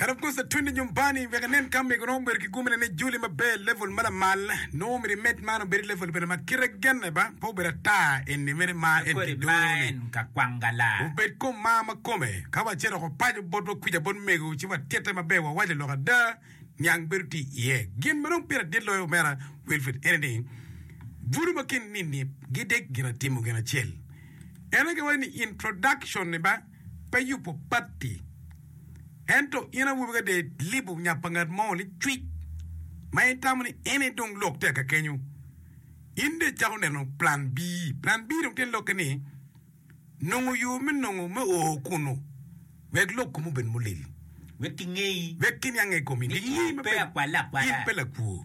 And of course, twende nyumbani wek inen ka mego nongo obedo ki gumine ni Julie maber level ma lamal nongo obedo i med man obedo i level bene ma kite genne ba pe obedo ata eni mere ma en Kodi ma kidoni. en ka kwang gala. Obed kom ma ma kome ka wace dok opaco botwa kwica bot mego ci watitte maber wawaco lok ada niang bedo tye iye. Gin ma dong pire adit loyo omera Wilfred ene ni bulu ma kin nini gidek gin atimo gin acel. Ene giwaco ni introduction ni ba Pe yubo patti. Ento in awobi ka dong ilibo nya pa ngat mo ni cwic ma itamo ni en aye dong lok tye ka kenyo, in dong icako neno plan B. Plan B dong tye ni lokke ni nongo yo me nongo me o kunu wek lok komi obed mulil, wek kiniange i komi, gingei maber ni in pe lakwo.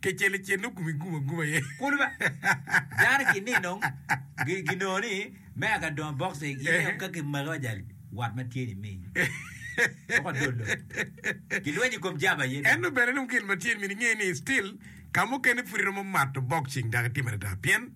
Kecel ecel nongo kome gum aguma aye. Kulu ba. Dano ki ni nong gi gi nongo ni me a ka dongo box e in nong ka ki maki wa jali wat ma tye ni mi woko adolo. Ki lwenyo kom jaba aye dong. Ento bene nongo gin ma tye ni mi ni nge ni still ka mukene pudi romo mato boxing dok itimo adada pien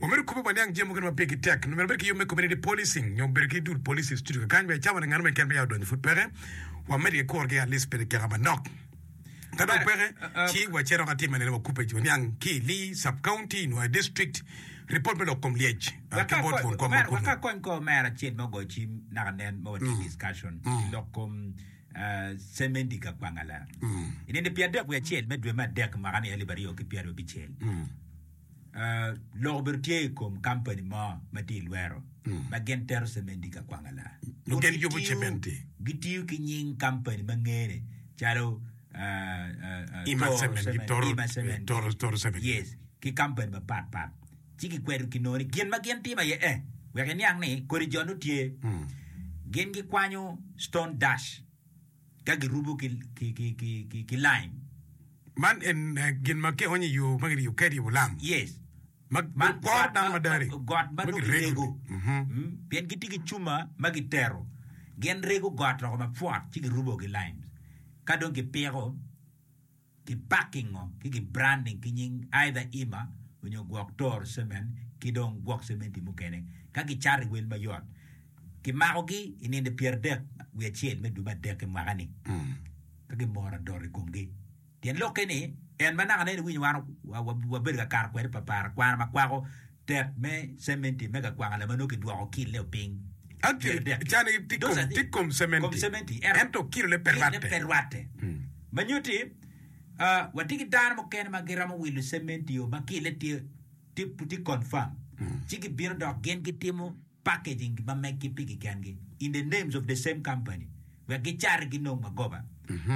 Wamito kobbe waniang jami mukene ma pigi tek, nyo myero wabed ki yub me community policing nyo bedo ki dul police i studio kekany wek cawa ni nganu me kene peya odonyo pud peke, wamed ki kuro gi at least pene kika manok. Ka dong peke, ci wace dok atim ene wakubbe waniang ki i Lee sub county nyo i district report me lok kom lyec ki bot twon kom ma kunu. Waka kony kor Mayor acel ma ogoyo cim naka nen ma watye i discussion i lok kom cemendi ka Kwangala i nino pi adek wiye acel me dwe me adek mwaka ni alip aryo ki pyerabicel. lok obedo tye i kom kampani mo ma tye i lwero ma gin tero cementi i ka kwanga la. Gitiyo ki nying kampani ma ngene calo Ima Cement ki kampani mapat pat ci gikweto ki nongo ni gin ma gin timo aye eh wek iniang ni kodi jo nongo tye gin gikwanyo stone dash. ka girubo ki laim. Man ene gin ma kionyo i yo ma kiriyo kadi i Ulam. Yes. Ma kor dano ma dari. Got ma nongo kirego. Pien gitye ki cuma ma gitero. Gin rego got loko mapwot ci girubo ki limes. Ka dong gipiko. Gipakingo ki gibranding ki nying aidha ima onyo gwok toro cemen ki dong gwok cementi mukene ka gicato i wel mayot. Kimakogi i nino pyeradek wiye acel me dwe me adek i mwaka ni ka gimoro adot i komgi. Tyen lokke ni en ma naka nene iwinyo wan wabedo ka kato kwede papara kwana makwako Tek me cementi me kakwaka lama nongo kidwoko kile o piny. Myero dek ki dosa adek kom cementi, ento kilone pe rwatte. Ma nyutti, watye ki dano mukene ma giromo wilo cementi o ma kile tye confirm, ci gibino dok gin gitimo. packaging ma meggi pigi kengi in the names of the same company wek gicarre ginong magoba.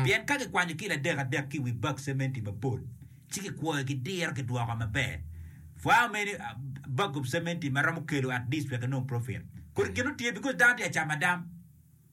Pien ka kikwanyo kilo adek adek ki i wi bag cementi mapol ci kikwoyo ki diro kidwoko maber for how many bag of cementi ma romo kelo at least wek inong profit kodi gin otye because dano tye ka camo adam.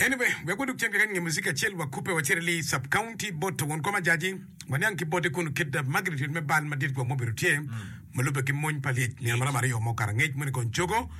Anyway, wek wadug cen keken nge muziki acel wakubbe wacit i Lee Sub-County bot to won kom ajaji, waniang ki bote kunu kit magnitude me bal madit gwok mubedo tye, ma lubbe ki mony pa lyec nino maromo aryo mo karangec moni kong cogo,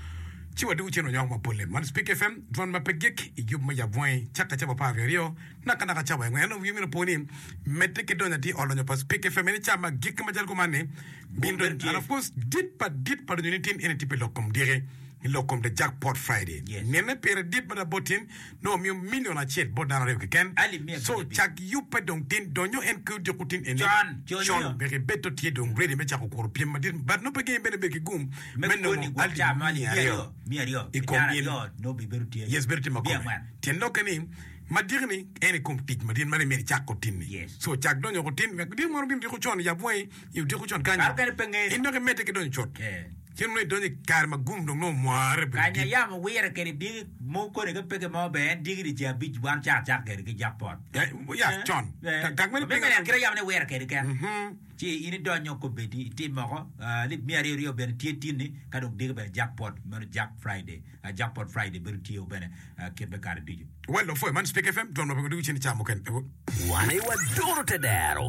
ci wadugu cen wanyoko mapolle. Man Speke FM, dwan ma pe gik, i yub me yab bwangi, cakke cawa apar wiye aryo, nakanaka cawa engo. Ento wii omyero opo ni, medde ki donyo atir ot lonyo pa Speke FM, eni ca ma gik macalo kuman-ni bino donyo, and of course, dit pa dit pa lonyo nitin eni tye pi lok kom diki. I lok kom The Jackpot Friday, nene pire dit mada bot tin nongo miyo milion acel bot dano aryo keken. Co cak yubbe dong tin donyo en ki odiko tin ene. Con wek ibedo tye dong ready me cako kuro pyem madit but nongo pe gengi bene bedo ki gum me nongo alip miya aryo i kom in. Yes bedo tye makome tyen lokke ni madiki ni en i kom tic madit mada imito icako tin ni. Co cak donyo woko tin wek diko maro bino diko con yab wangi i odiko con kanyo in dok imedde ki donyo cut. Cen nongo idonyo i kare ma gum dong nongo mware obedo dit. Kanya yamo wire kede diki mo kodi ka peke mo bene en diki dicee abic wan caa cako kede ki jok pot. Ya con. Gag meno pingo? Meno ya kite yamo ni wire kede kek ci in idonyo kobedi itim moko lib miya aryo ryo bene tye tinni ka dong diki bene jok pot meno jok Friday jok pot Friday bedo tye o bene kit me kare ducu. Wa lopwe man Speak FM dwon ma pingo diki cen i caa mukene. Wane wa doro te dero.